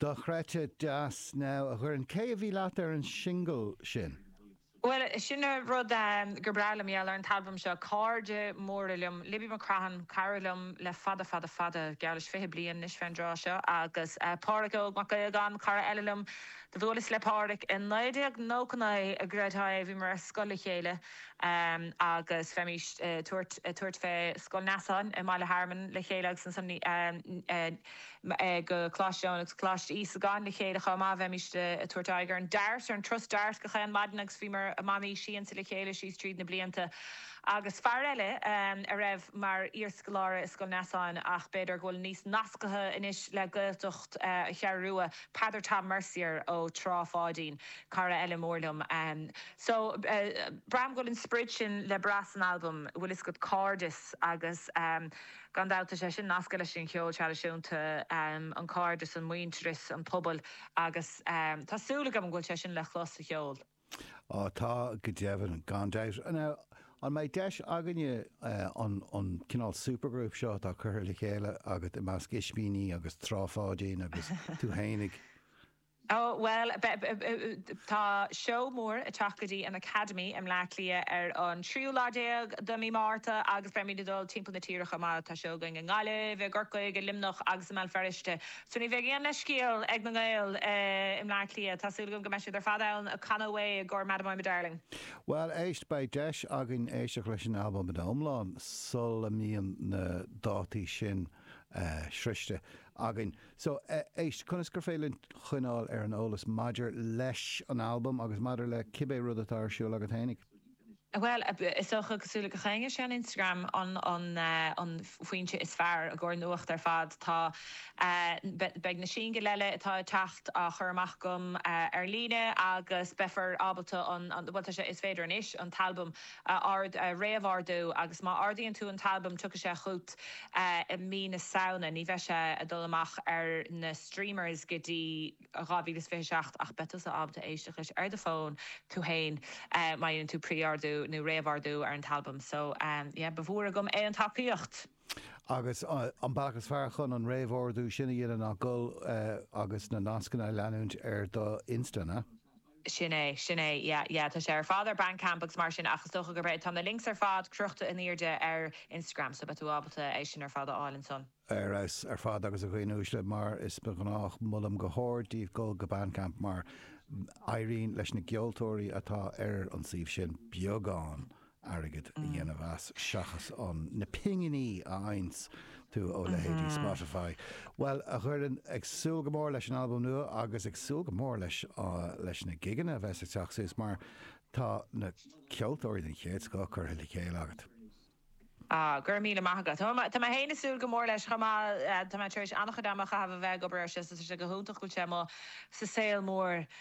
Dochreidte deas. Now, a Dhoireann, cé a bhí leat ar an singil sin? Bhuel, sin an rud gur breá liom, yeah, ar an t-albam seo, cairde móra liom, Libby McCrohan, cara liom le fada fada fada, geall leis fiche bliain anois fé an dtráth seo, agus Páraic Óg Mac Aodhagáin, cara eile liom, do bhuaileas le Páraic i naoi déag nócha naoi, an gcreidfeá é, bhíomar ar scoil le chéile. agus bheimis ag tabhairt fé Scoil Neasáin i mBaile Hearman le chéile agus ansan go Coláiste Eoin agus Coláiste Íosagáin le chéile chomh maith. Bheimis ag tabhairt aghaidh ar an Dart, ar an Trust Dart gach aon mhaidin agus bhíomar i mbannaí Siansa le chéile síos tríd na blianta. Agus fear eile a raibh mar iarscoláire i Scoil Neasáin ach b'fhéidir go bhfuil níos nasctha anois le Gaeltacht Cheathrú Rua, Peadar Tom Mercier ó Trá Pháidín, cara eile mór liom. So, braithim go bhfuil an sprid sin le brath san albam, an bhfuil fhios agat, cairdeas agus gan dabht tá sé sin nasctha leis an gceol traidisiúnta, an cairdeas, an muintearas, an pobal agus tá súil agam go bhfuil sé sin le clos sa cheol. Á tá, go deimhin, gan dabht. Now, an mbeidh deis againne an cineál supergroup seo atá curtha le chéile agat i measc Ispíní agus Trá Pháidín agus tú fhéinig, Ó, bhuel, tá seó mór ag teacht go dtí an Academy i mBleá Cliath ar an tríú lá déag de mí Márta agus beimid ag dul timpeall na tíre chomh maith. Tá seó againn i nGaillimh, i gCorcaigh, i Luimneach agus i mBéal Feirste. So ní bheidh aon leithscéal ag na nGaeil i mBleá Cliath. Tá súil agam go mbeidh siad ar fad ann ag canadh away i gcomhair Madam I'm a Darling. Bhuel, éist, beidh deis againn éisteacht leis an albam ina iomlán sula mbíonn na dátaí sin sroichte againn. So, éist, conas gur féidir linn coinneáil ar an eolas maidir leis an albam agus maidir le cibé rud atá ar siúl agat fhéinig? Bhuel, is dócha, cosúil le gach éinne, sé an Instagram an foinse is fearr i gcomhair nuacht ar fad. Tá, beidh na singil eile atá ag teacht á chur amach agam ar líne agus beifear ábalta an, bhuel, tá sé, is féidir anois an t-albam a ord, a réamh-ordú agus má ordaíonn tú an t-albam tiocfaidh sé chugat i mí na Samhna, ní bheidh sé ag dul amach ar na streamers go dtí 2027 ach beidh tusa ábalta éisteacht leis ar do fón tú fhéin má dhéanann tú pre-ordú nó réamh-ordú ar an t-albam so yeah ba mhór agam aon tacaíocht. Agus an bealach is fearr chun an réamh-ordú sin a dhéanamh ná dul agus na nascanna a leanúint ar do Insta, an ea? Sin é, sin é, yeah, yeah, tá sé ar fad ar Bandcamp agus mar sin ach is dócha gurb é, tá na links ar fad crochta in airde ar Instagram so beidh tú ábalta é sin ar fad a fháil ansan. Ar fheabhas ar fad agus a dhaoine uaisle, mar is gnách, molaim go hard daoibh dul go Bandcamp mar éiríonn leis na gceoltóirí atá ar an suíomh sin beagán airgead a dhéanamh as seachas an na pinginí a fhaigheann tú ó leithéidí Spotify. Bhuel, a Dhoireann, ag súil go mór leis an albam nua agus ag súil go mór leis leis na gigeanna a bheas ag teacht suas mar tá na ceoltóirí den chéad scoth curtha le chéile agat. Ah, go raibh míle maith agat. Tá mé tá mé féin ag súil go mór leis chomh maith. Tá mé tar éis an-chuid ama a chaitheamh a bheith ag obair air sin so tá sé go hiontach go bhfuil sé amuigh sa saol mór.